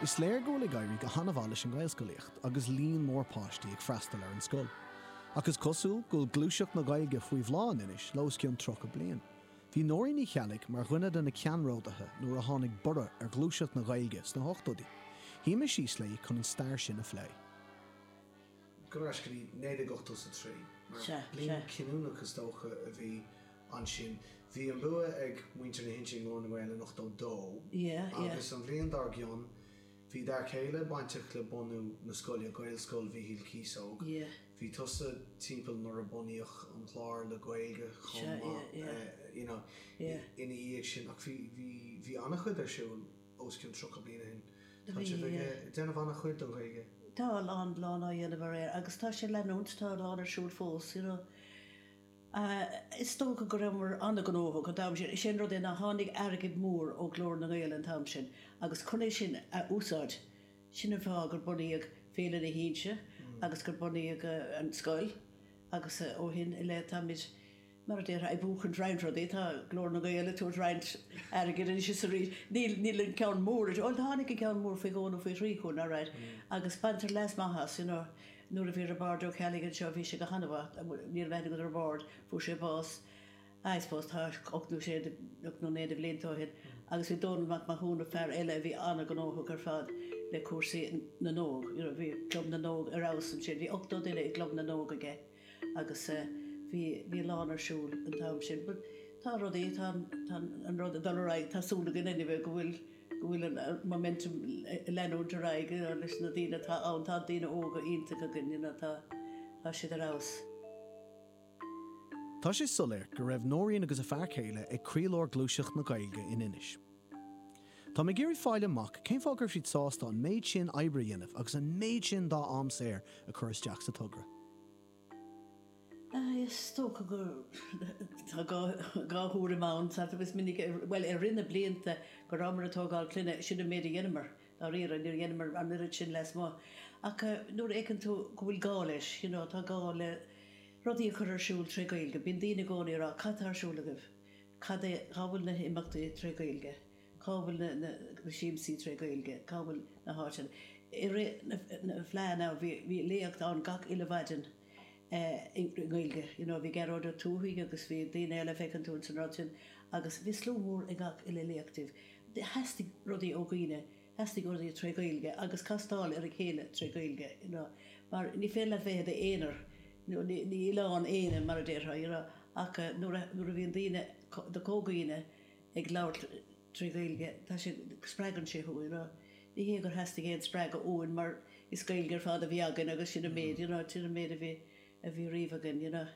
Is léir go bhfuil ag éirí go han-mhaith leis an nGaelscolaíocht agus líon mór páistí ag freastal ar an scoil. Ach is cosúil go bhfuil gluaiseacht na Gaeilge faoi bhláth in Inis le os cionn 30 bliain. Bhí Nóirín Ní Cheallaigh mar dhuine de na ceannródaithe nuair a tháinig borradh ar ghluaiseacht na Gaeilge sna hochtóidí. Shuímis síos léi chun an stair sin a phlé. Gaiscígh, 1983. Bliain chinniúnach is dócha a bhí ansin. Bhí an bua ag muintir na hInse i nGlór na nGael in 82 agus an bhliain dár gcionn bhí d'fhear céile bainteach le bunú na scoile, Gaelscoil Mhichíl Cíosóg. Bhí tusa timpeall nuair a bunaíodh an clár le Gaeilge chomh maith you know ina dhiaidh sin ach bhí, bhí, bhí ana-chuid ar siúl os cionn 30 bliain ó shin. Tá sibh ag déanamh ana-chuid don Ghaeilge. Tá a lán, lán á dhéanamh alright agus tá sé ag leanúint, tá a lán ar siúl fós you know. Is dócha go rabhamar an-ghnóthach an t-am sin. Is é an rud é ná tháinig airgead mór ó Ghlór na nGael an t-am sin agus chun é sin a úsáid, sin an fáth gur bunaíodh Féile na hInse agus gur bunaíodh an scoil agus ó shin i leith táimid, mar a déarfá, ag buachaint roinnt rudaí. Tá Glór na nGael ag tabhairt roinnt airgid anois is arís. Níl an ceann mór, bhuel tháinig an ceann mór faoi dhó nó faoi thrí chugainn, alright, agus baintear leas maith as, you know. Nuair a bhí Roibeárd Ó Ceallaigh anseo bhí sé go hana-mhaith, níl a fhios agam an raibh aithne agat ar Roibeárd, fuair sé bás, I suppose tá ocht nó, ocht nó naoi de bhlianta ó shin, agus bhí Dónall Mac Mathúna, fear eile a bhí an-ghnóthach ar fad le cúrsaí na n-óg, you know, bhí Club na nÓg ar fheabhas ansin, bhí ochtó duine i gClub na nÓg aige agus eh bhí, bhí a lán ar siúl an t-am sin but tá rudaí, tá an, tá an rud ag dul ar aghaidh, tá súil againn anyway go bhfuil. go bhfuil an momentum ag leanúint ar aghaidh leis na daoine atá ann. Tá daoine óga iontacha againn, you know, tá siad ar fheabhas. Tá sé soiléir go raibh Nóirín agus a fear céile ag croílár ghluaiseacht na Gaeilge in Inis. Tá mé ag iarraidh fáil amach cén fáth go raibh siad sásta an méid sin oibre a dhéanamh agus an méid sin dá am saor a chur isteach sa togra. Is dócha go raibh dhá thuairim ann agus minic, bhuel, i rith na blianta go rabhamar ag tógáil clainne, sin an méid a dheineamar, dáiríre, níor dheineamar an oiread sin lasmuigh. Ach nuair a fheiceann tú go bhfuil gá leis, you know, tá gá le rudaí a chur ar siúl tré Gaeilge, bíonn daoine i gcónaí ag rá, cad tá ar siúl agaibh, cad é, cá bhfuil na himeachtaí tré Gaeilge? Cá bhfuil na siamsaí tré Gaeilge? Cá bhfuil na háiteanna? I rith na Fleá now bhí léacht ann gach uile mhaidin i nGaeilge. You know bhí Gearóid Ó Tuathaigh agus bhí daoine eile, feiceann tú ins an rud sin, agus bhí slua mór ag gach uile léacht díobh. Theastaigh rudaí ó dhaoine, theastaigh rudaí tré Gaeilge agus castáil ar a chéile tré Gaeilge, you know, mar ní féidir leat bheith i d'aonar, you know, ní oileán éinne mar a déarfá, you know, ach nuair a bhíonn daoine, do comhdhaoine, ag labhairt trí Ghaeilge, tá sé, spreagann sé thú, you know. Ní hé gur theastaigh aon spreagadh uainn mar is Gaeilge ar fad a bhí againn agus sin an méid, you know, sin an méid a bhí, a bhí riamh againn, you know.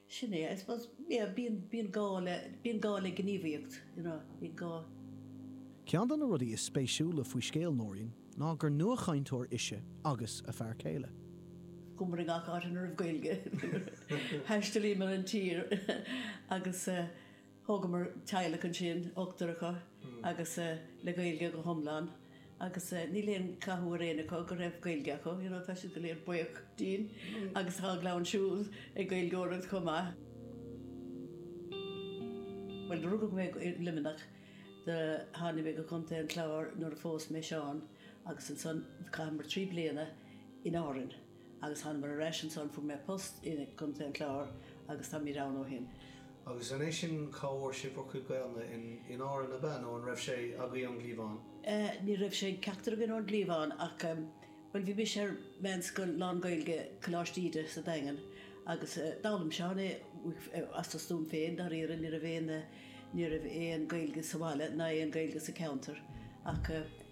Sin é, I suppose, yeah, bíonn, bíonn gá le, bíonn gá le gníomhaíocht, you know, bíonn gá. Ceann de na rudaí is spéisiúla faoi scéal Nóirín ná gur nuachainteoir ise agus a fear céile. Chuamar i ngach áit ina raibh Gaeilge. Thaistealaíomar an tír agus. Thógamar teaghlach ansin, ochtar acu, agus le Gaeilge go hiomlán, agus níl aon chathú ar éinne acu go raibh Gaeilge acu, you know, tá siad go léir buíoch dínn, agus tá a gclann siúd ag Gaeilgeoireacht chomh maith. Bhuel, rugadh mé i Luimneach, tháinig mé go Contae an Chláir nuair a phós mé Seán, agus ansan, chaitheamar trí bliana in Árainn. agus tháinig mé ar ais ansan, fuair mé post i gContae an Chláir agus táimid ann ó shin. Agus an é sin cá bhfuair sibh bhur gcuid Gaelainne in Árainn, ab ea, nó an raibh sé agaibh ón gcliabhán? Ní raibh sé ag ceachtar againn ón gcliabhán ach, bhuel, bhí mise ar meánscoil lán-Ghaeilge, Coláiste Íde sa Daingean, agus d'fhoghlaim Seán é as a stuaim féin, dáiríre, ní raibh aon, ní raibh aon Ghaeilge sa bhaile ná aon Ghaeilge sa cheantar ach.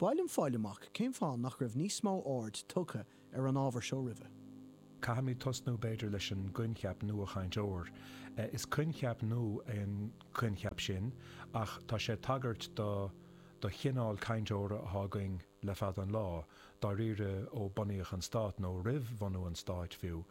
B'áil liom fáil amach cén fáth nach raibh níos mó aird tugtha ar an ábhar seo roimhe. Caithfimid tosnú b'fhéidir leis an gcoincheap 'nuachainteoir', is coincheap nua é an coincheap sin ach tá sé ag tagairt do do chineál cainteora atá againn le fada an lá, dáiríre ó bunaíodh an stát, nó roimh bhunú an stáit fiú.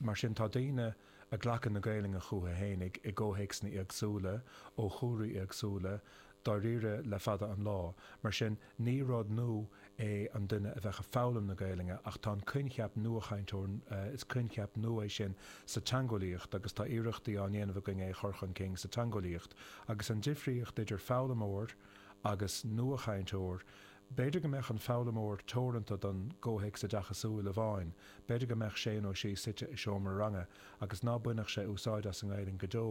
Mar sin tá daoine. ag glacadh na Gaelainne chúthu féinig i gcomhthéacsanna éagsúla, ó chúlraí éagsúla, dáiríre le fada an lá. Mar sin, ní rud nua é an duine a bheadh ag foghlaim na Gaelainne, ach tá an coincheap nuachainteoir, is coincheap nua é sin sa teangeolaíocht agus tá iarrachtaí á ndéanamh againn é a chur chun cinn sa teangeolaíocht, agus an difríocht idir foghlaimeoir agus nuachainteoir, B'fhéidir go mbeadh an foghlaimeoir teoranta don gcomhthéacs oideachasúil amháin, b'fhéidir go mbeadh sé nó sí suite i seomra ranga agus ná bainfeadh sé úsáid as an nGaelainn go deo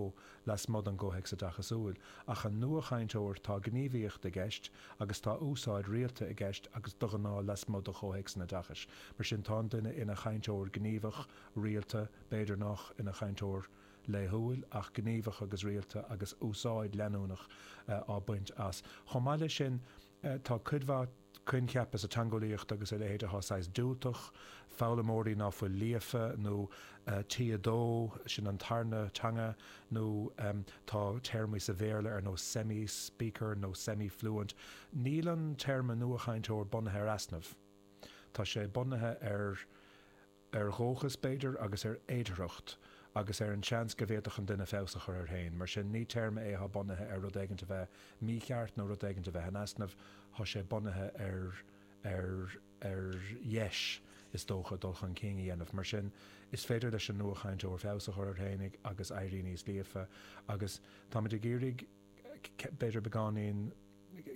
lasmuigh den gcomhthéacs oideachasúil, ach an nuachainteoir, tá gníomhaíocht i gceist agus tá úsáid rialta i gceist agus de ghnáth lasmuigh de chomhthéacs an oideachais, mar sin tá an duine ina chainteoir gníomhach, rialta, b'fhéidir nach ina chainteoir laethúil, ach gníomhach agus rialta agus úsáid leanúnach á baint as. Chomh maith leis sin. Tá cuid mhaith coincheapa sa teangeolaíocht agus a leithéid atá saghas diúltach, foghlaimeoirí ná fuil líofa, nó T2, sin an tarna teanga, nó tá téarmaí sa Bhéarla ar nós semi-speaker nó semi-fluent. Níl an téarma nuachainteoir bunaithe ar easnamh, tá sé bunaithe ar. ar dhúchas, b'fhéidir, agus ar fhéidearthacht, agus ar an seans go bhféadfadh an duine feabhas a chur air féin. Mar sin, ní téarma é atá bunaithe ar rud éigint a bheith mícheart nó rud éigint a bheith in easnamh, tá sé bunaithe ar ar ar dheis, is dócha, dul chun cinn a dhéanamh. Mar sin, is féidir leis an nuachainteoir feabhas a chur air féin agus éirí níos líofa, agus táimid ag iarraidh, b'fhéidir beagáinín,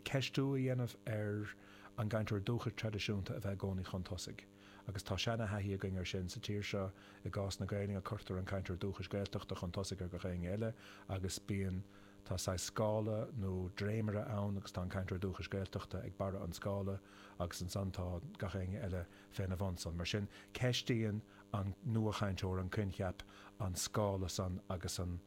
ceistiú a dhéanamh ar an gcainteoir dúchais traidisiúnta a bheith i gcónaí chun tosaigh. Agus tá seana-thaithí againn air sin sa tír seo, i gcás na Gaelainne cuirtear an cainteoir dúchais Gaeltachta chun tosaigh ar gach éinne eile agus bíonn, tá saghas scála nó dréimire ann agus tá an cainteoir dúchais Gaeltachta ag barra an scála agus ansan tá gach éinne eile féna bhunsan. Mar sin, ceistíonn an nuachainteoir an coincheap, an scála san agus an.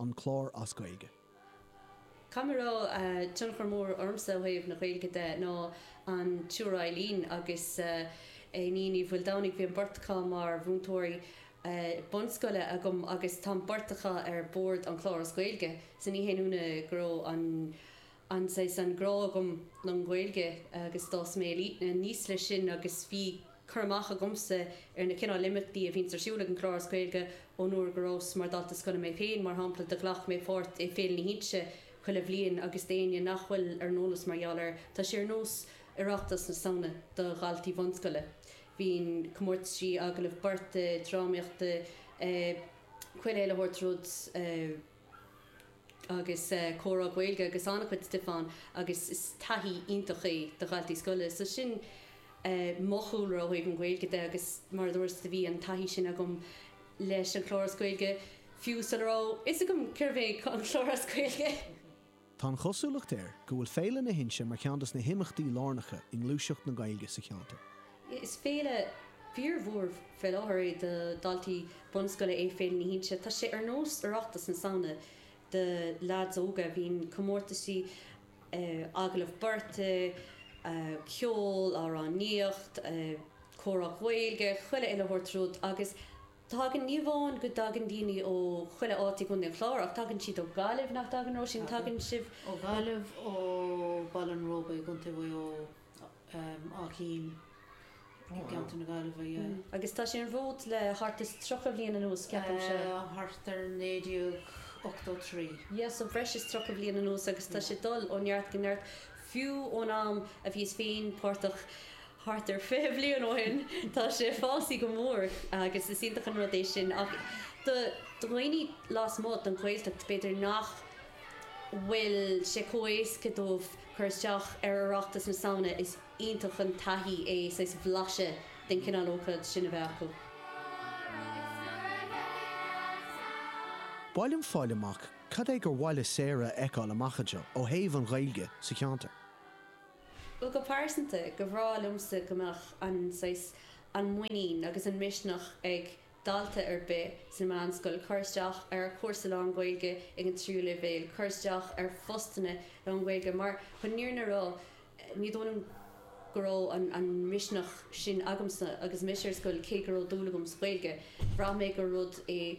an Chláir as Gaeilge. go raibh tionchar mór ormsa ó thaobh na Gaeilge de ná an tSiúr Eileen agus Iníon Ní Mhaoldomhnaigh. Bhí an bheirt acu mar mhúinteoirí bunscoile agam agus tá an bheirt acu ar Bhord an Chláir as Gaeilge. Sea, ní haon ionadh go raibh an. an-saghas grá agam don Ghaeilge agus d'fhás mé aníos leis sin agus bhí cur amach agamsa ar na cineál imeachtaí a bhíonns ar siúl ag an gclár as Gaeilge ón uair go rabhas mar dalta scoile mé féin. Mar shampla, do ghlac mé pháirt i Féile na hInse chuile bhliain agus d'éinne nach bhfuil ar an eolas mar gheall air, tá sé ar nós Oireachtas na Samhna do dhaltaí bhunscoile. Bíonn comórtaisí, agallaimh beirte, drámaíochta, eh, chuile uile shórt rud. agus comhrá Gaeilge agus an-chuid stuif ann agus is taithí iontach é do dhaltaí scoile so sin mo chúlra ó thaobh an Ghaeilge de agus mar a dúras do bhí an taithí sin agam leis an chlár as Gaeilge fiú sula raibh fhios agam cérbh é an clár as Gaeilge. Tá an chosúlacht air go bhfuil Féile na hInse mar cheann de na himeachtaí lárnacha i ngluaiseacht na Gaeilge sa cheantar. Is féile fíormhór faoi láthair é do dhaltaí bunscoile é Féile na hInse. Tá sé ar nós Oireachtas na Samhna do leaids óga. Bíonn comórtaisí, agallamh beirte, ceol, amhránaíocht, comhrá Gaeilge, chuile uile shórt rud agus Tagann, ní amháin go dtagann daoine ó chuile áit i gContae an Chláir, ach tagann siad ó Ghaillimh, nach dtagann, Róisín? Tagann sibh ó. Ó Ghaillimh, ó Bhaile an Róba i gContae Mhaigh Eo, Áth Cinn i gContae na Gaillimhe, yeah. Agus tá sé ar an bhfód le thart is tríocha bliain anuas, ceapaimse. Thart ar 1983. Yeah, so breis is tríocha bliain anuas agus tá sé ag dul ó neart go neart, fiú ón am a bhíos féin páirteach thart ar fiche bliain ó shin, tá sé fásaithe go mór agus is iontach an rud é sin. Ach do dhaoine lasmuigh den Ghaeltacht, b'fhéidir nach bhfuil sé chomh héasca dóibh cur isteach ar Oireachtas na Samhna, is iontach an taithí é saghas blaiseadh den chineál ócaid sin a bheith acu. Ba mhaith liom fáil amach cad é gur mhaith le Sarah a fheiceáil amach anseo ó thaobh an Ghaeilge sa cheantar. Bhuel, go pearsanta, ba bhreá liomsa go mbeadh an saghas, an muinín agus an misneach ag dalta ar bith sa mheánscoil cur isteach ar chúrsa lánGhaeilge ag an tríú leibhéal, cur isteach ar phostanna lánGhaeilge mar chun, ní, ní raibh, ní dóigh liom go raibh an misneach sin agamsa agus mise ar scoil cé go raibh dúil agam sa Ghaeilge. Bhraith mé go, rud é.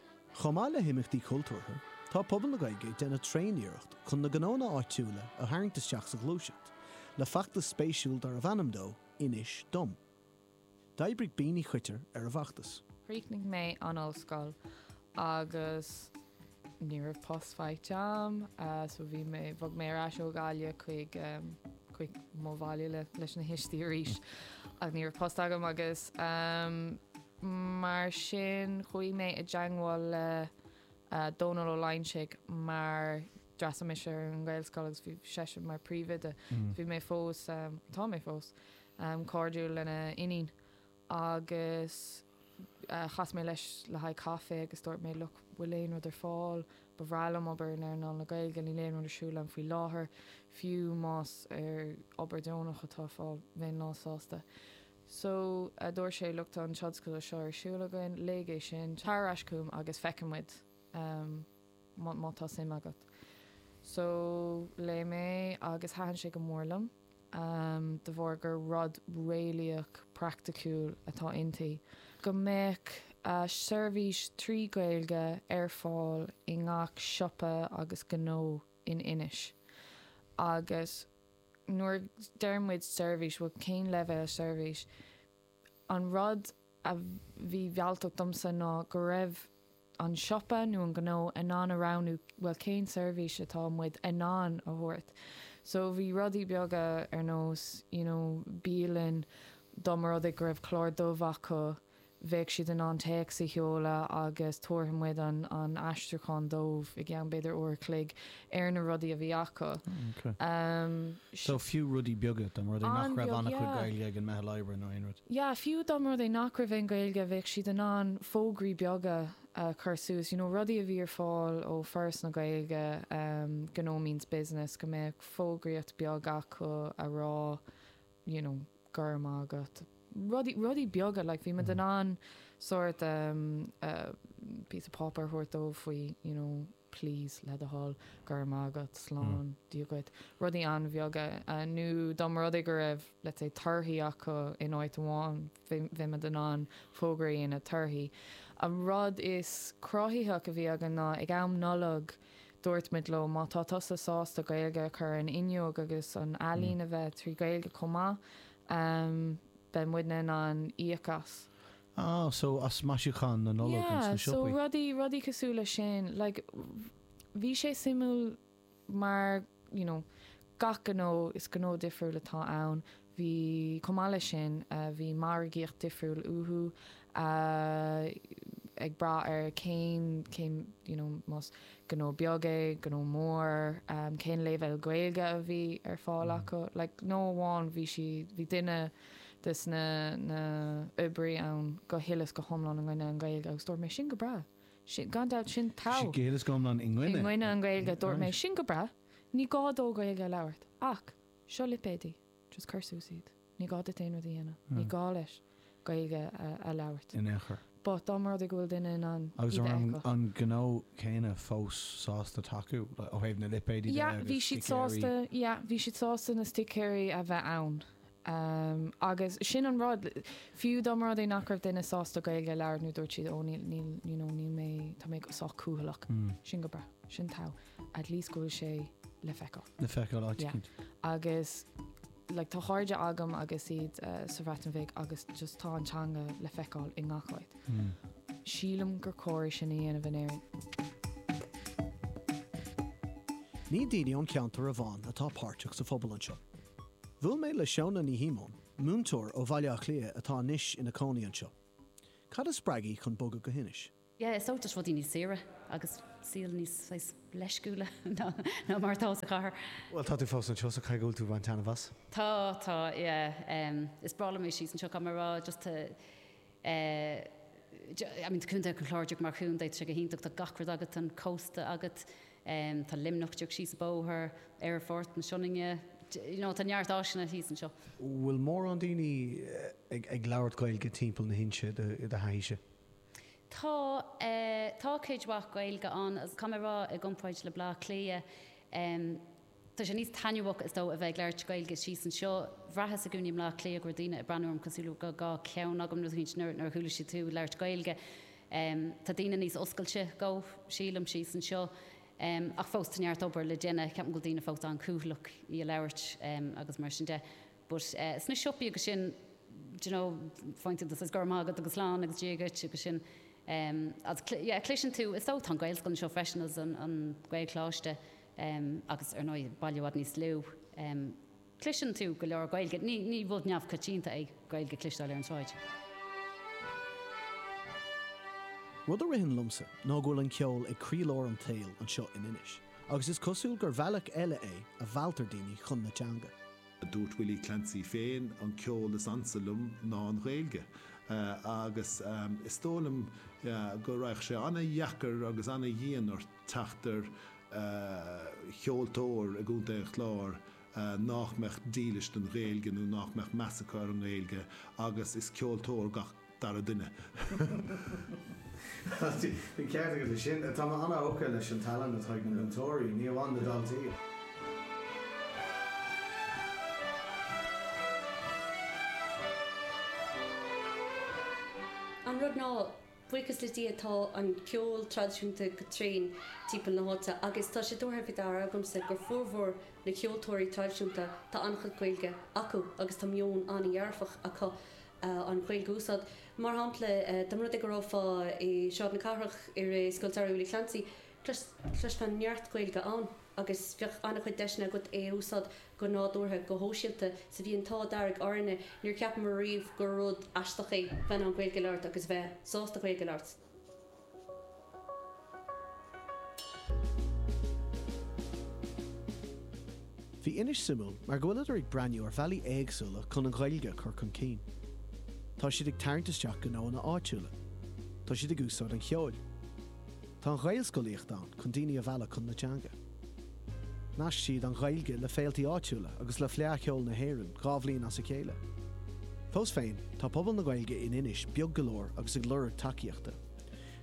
Chomh maith le himeachtaí cultúrtha, tá pobal na Gaeilge ag déanamh tréaniarracht chun na gnóanna áitiúla a tharraingt isteach sa ghluaiseacht, le feachtas spéisiúil darbh ainm dó 'Inis Dom'. D'oibrigh Bean Uí Choitir ar an bhfeachtas. Chríochnaigh mé an ollscoil agus ní raibh post faighte agam so bhí mé, bhog mé ar ais ó Ghaillimh chuig, chuig mo bhaile leis na tuistí arís ach ní raibh post agam agus, Mar sin, chuaigh mé i dteangmháil le Dónal Ó Loingsigh mar d'fhreastail mise ar an nGaelscoil agus bhí seisean mar príomhoide. Bhí mé fós, tá mé fós, cairdiúil lena iníon agus chas mé leis le haghaidh caife agus dúirt mé, look, bhfuil aon rud ar fáil, ba bhreá liom obair in earnáil na Gaeilge, níl aon rud ar siúl agam faoi láthair, fiú más obair deonach atá ar fáil, bheinn lánsásta. so, a dúirt sé, look, tá an tionscadal seo ar siúl againn, léigh é sin, tar ar ais chugam agus feicfidh muid má tá suim agat. So, léigh mé agus thaitin sé go mór liom de bharr gur rud réalaíoch, praiticiúil atá inti, go mbeadh seirbhís trí Ghaeilge ar fáil i ngach siopa agus gnó in Inis agus, nuair a deir muid seirbhís, bhuel, cén leibhéal seirbhís? An rud a bhí mealltach domsa ná go raibh an siopa nó an gnó in ann a roghnú, bhuel, cén seirbhís atá muid in ann a thabhairt? So bhí rudaí beaga ar nós, you know, bialann, dá mba rud é go raibh clár dubh acu, bheadh siad in ann téacs a sheoladh agus tabharfaidh muid an aistriúchán dóibh i gceann b'fhéidir uair a chloig ar na rudaí a bhí acu. So fiú rudaí beaga, dá mba rud é nach raibh an-chuid Gaeilge ag an meitheal oibre nó aon rud? Yeah, fiú dá mba rud é nach raibh aon Ghaeilge, bheadh siad in ann fógraí beaga a chur suas, you know rudaí a bhí ar fáil ó Foras na Gaeilge, Gnó Means Business, go mbeadh fógraíocht beag acu a rá, you know, go raibh maith agat, rudaí, rudaí beaga, like bhí muid in ann sort um piece of páipeár a thabhairt dóibh faoi, you know, please, le do thoil, go raibh maith agat, slán, Dia dhuit, rudaí an-bheaga, nó dá mba rud é go raibh, let's say, torthaí acu in áit amháin, bheadh muid in ann fógra a dhéanamh, torthaí. An rud is cruthaithí a bhí againn ná ag am Nollag Dúirt muid leo, má tá tusa sásta Gaeilge a chur san fhuinneog agus an ealaín a bheith trí Ghaeilge chomh maith, beidh muidne in ann íoc as. Ah, so as maisiúchán na Nollag agus na siopaí. Yeah, so rudaí, rudaí cosúil leis sin. Like, bhí sé suimiúil mar, you know, gach gnó, is gnó difriúil atá ann. Bhí, chomh maith leis sin, bhí margaíocht difriúil uathu, ag brath ar cén, cén, you know, más gnó beag é, gnó mór, cén leibhéal Gaeilge a bhí ar fáil acu. Like, gnó amháin bhí sí, bhí duine de sna, na, oibrí ann go huile is go hiomlán i gcoinne an Ghaeilge agus dúirt mé, sin go breá. Sin, gan dabht, sin Bhí siad. go huile is go hiomlán i i gcoinne. gcoinne an Ghaeilge. Dúirt mé, Right. sin go breá. Ní gá dó Gaeilge a labhairt. Ach. Seo lipéidí, just cur suas iad. Ní gá duit aon rud a dhéanamh. Ní gá leis Gaeilge a labhairt. in aon chor. But dá mba rud é go bhfuil duine in ann iad a fheiceáil. Agus an raibh an gnó céanna fós sásta tacú le, ó thaobh na lipéidí de agus sticéirí? Yeah, bhí siad sásta, yeah, bhí siad sásta na sticéirí a bheith ann. Agus sin an rud, fiú dá mba rud é nach raibh duine sásta Gaeilge a labhairt nó dúirt siad, oh níl, níl, you know, níl mé, tá mé sách cúthaileach. Sin go breá. Sin tough. at least go bhfuil sé le feiceáil. Le feiceáil, áit éicint. Agus like tá cairde agam agus iad sa Bhreatain Bheag agus just tá an teanga le feiceáil i ngach áit. Sílim gur cóir é sin a dhéanamh in Éirinn. Ní daoine ón cheantar amháin atá páirteach sa phobal anseo. Bhuail mé le Shóna Ní Shíomóin, múinteoir ó Bhaile Átha Cliath atá anois ina cónaí anseo. Cad a spreag í chun bogadh go hInis? yeah is dócha toisc rudaí níos saoire agus saol níos saghas leisciúla ná mar atá sa chathair. Bhuel tá tú fós anseo so caithfidh go bhfuil tú ag baint taitneamh as. Tá tá yeah em is breá liom é síos anseo caithfidh mé a rá just tá eh I mean tá Contae an Chláir mar chontae tá sé go hiontach tá gach rud agat tá an cósta agat em tá Luimneach díreach síos an bóthar, Aerfort na Sionainne you know tá neart áiseanna thíos anseo. Bhfuil mórán daoine ag ag labhairt Gaeilge timpeall na hInse i do thaithíse? Tá, tá cuid mhaith Gaeilge ann agus caithfidh mé a rá i gcompráid le Bleá Cliath, tá sé níos taitneamhach is dóigh a bheith ag labhairt Gaeilge síos anseo. Bhraitheas i gcónaí i mBleá Cliath go raibh daoine ag breathnú orm cosúil le go raibh dhá cheann agam nó rud éigint nuair a chuala siad tú ag labhairt Gaeilge. Tá daoine níos oscailte dó, sílim, síos anseo ach fós tá neart obair le déanamh. Ceapaim go bhfuil daoine fós an-cúthaileach í a labhairt agus mar sin de. But sna siopaí agus sin, d'you know, faigheann tú says Go raibh maith agat agus Slán agus Dia dhuit agus sin agus yeah cloiseann tú, is dóigh tá an Gaelscoil anseo freisin is an Gaelcholáiste agus ar ndóigh baile i bhfad níos lú, cloiseann tú go leor Gaeilge, ní ní rud neamhchoitianta é Gaeilge a chloisteáil ar an tsráid. Rud a ritheann liomsa ná go bhfuil an ceol ag croílár an tsaoil anseo in Inis agus is cosúil gur bhealach eile é a mealltar daoine chun na teanga. Dúirt Willie Clancy féin, an ceol is ansa liom ná an Ghaeilge, agus is dóigh liom go raghadh sé an-deacair agus an-dhian ort teacht ar cheoltóir i gContae an Chláir nách mbeadh dílis don Ghaeilge nó nách mbeadh meas acu ar an nGaeilge agus is ceoltóir gach dara duine. Tá ceart agat leis sin. Tá mé an-thógtha leis an tallann atá ag na múinteoirí, ní amháin na daltaí. An rud ná, buíochas le Dia, tá an ceol traidisiúnta go tréan timpeall na háite agus tá sé tabhartha faoi deara agamsa gur formhór na gceoltóirí traidisiúnta, tá an-chuid Gaeilge acu agus tá meon an-dhearfach acu. an Ghaeilge a úsáid. Mar shampla, dá mba rud é go rabhfá i Sráid na Cathrach i rith Scoil Samhraidh Willie Clancy, chloisfeá neart Gaeilge ann agus bheadh an-chuid deiseanna agat é a úsáid go nádúrtha, go sóisialta. Sa mbliain atá, dar linne, níor cheapamar riamh gur rud aisteach é bheith in ann Gaeilge a labhairt agus bheith sásta Gaeilge a labhairt. Bhí Inis suimiúil mar go bhfuilid ag breathnú ar bhealaí éagsúla chun an Ghaeilge a chur chun cinn. Tá siad ag tarraingt isteach gnóanna áitiúla. Tá siad ag úsáid an cheoil. Tá an Ghaelscolaíocht ann chun daoine a mhealladh chun na teanga. Nasc siad an Ghaeilge le féiltí áitiúla agus le Fleadh Cheoil na hÉireann dhá bhliain as a chéile. Fós féin, tá pobal na Gaeilge in Inis beag go leor agus ag lorg tacaíochta.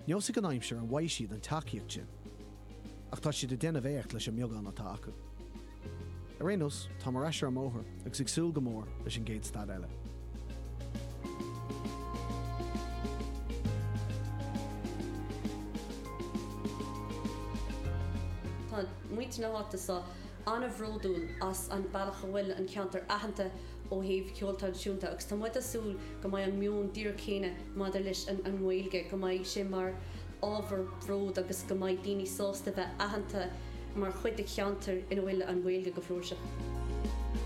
Neosfaidh an aimsir an bhfaighidh siad an tacaíocht sin. Ach tá siad ag déanamh éacht leis an mbeagán atá acu. Ar aon nós, táim ar ais ar an mbóthar. agus ag súil go mór leis an gcéad stad eile. Tá muintir na háite seo an-bhródúil as an bealach a bhfuil an ceantar aitheanta ó thaobh ceol traidisiúnta agus tá muid ag súil go mbeidh an meon díreach céanna maidir leis an nGaeilge, go mbeidh sé mar ábhar bróid agus go mbeidh daoine sásta bheith aitheanta mar chuid de cheantar ina bhfuil an Ghaeilge go flúirseach.